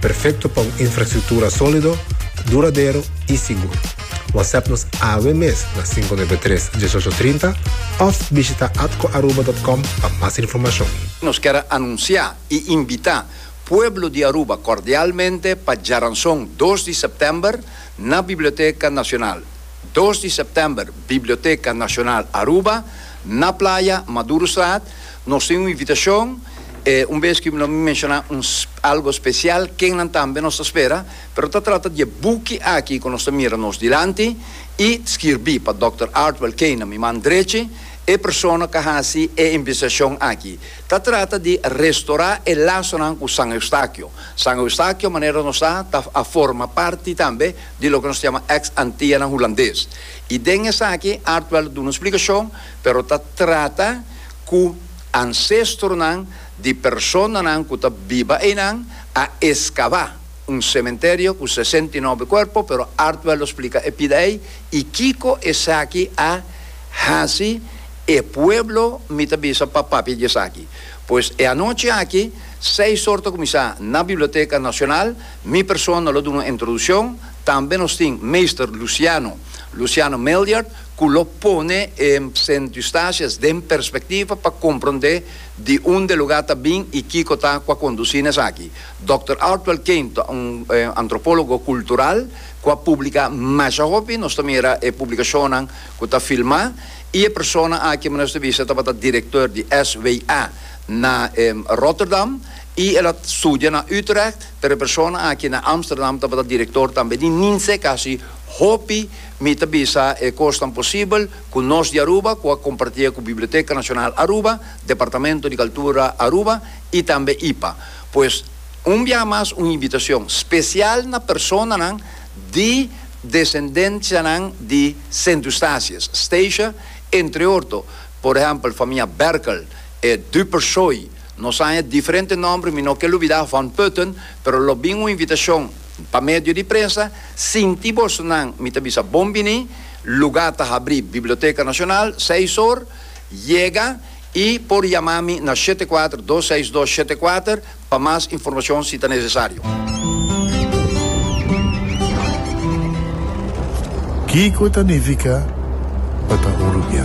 Perfecto pa un infrastructura solido, duradero y sigur. WhatsApp nos awe mes na cinco nuebe tres, dieshocho trinta of bishita atcoaruba.com pa mas informacion. Nos ker a anuncia y invita pueblo di Aruba cordialmente pa djaranzon dos di september na Biblioteca Nacional, dos di september, Biblioteca Nacional Aruba, na Playa Madurostraat, Nos tin un invitashon, e un bes ki lo mi menshoná un algo spesial kennan tambe nos ta spera, pero ta trata di e buki aki ku nos ta mira nos dilanti i skirbí pa Dòkter Artwell Kane, mi man drechi, e persona ku a hasi e investigashon aki. Ta trata di restorá e lasonan ku San Eustakio. San Eustakio, manera nos sa, ta, a forma parti tambe di loke nos ta yama ex Antianan Hulandes. I den esaki Artwell a duna un splikashon, pero ta trata. ku ansestronan di personanan ku ta biba einan a eskabá un sementerio ku sesenta i nobe kuerpo, pero Artwell lo splika e pida ei i kiko esaki a hasi e pueblo mi ta bisa pa papia di esaki. Pues e anochi aki seis or ta kuminsá na Biblioteka Nashonal, mi persona lo duna un introdushon, tambe nos tin Meester Luciano, Luciano Miljard, cu lo pone e centustacias den perspectiva pa comprende di und'e lugar ta bin y kico ta cu a conduci n'esaki. Dòkter Artwell Kane ta un antropologo cultural cu a publica masha hopi, nos ta mira e publicacionnan cu ta filma, y e persona aki manera nos ta bisa tabata director di SWA na Rotterdam y el a studia na Utrecht, pero e persona aki na Amsterdam tabata director tambe di ninse casi hopi Mi ta bisa e kosnan posibel ku nos di Aruba ku a kompartié ku Biblioteka Nashonal Aruba, Departamento di Kaltura Aruba i tambe ipa. Pues, un biaha mas un inbitashon spesial na personanan di desendenshanan di Sint Eustatius, Statia, entre orto, por ehèmpel famia Berkel, e Dupersoy, nos haña diferente nòmber, mi no ke lubidá Van Putten, pero lo bin un invitashon. Pa medio di prensa, sinti boso nan mi ta bisa bon bini, luga ta habri Biblioteca Nacional seis or, yega y por yama mi na shete kuater dos seis dos shete kuater pa mas informacion si ta necesario. Kiko ta nifica pa ta hurupiá?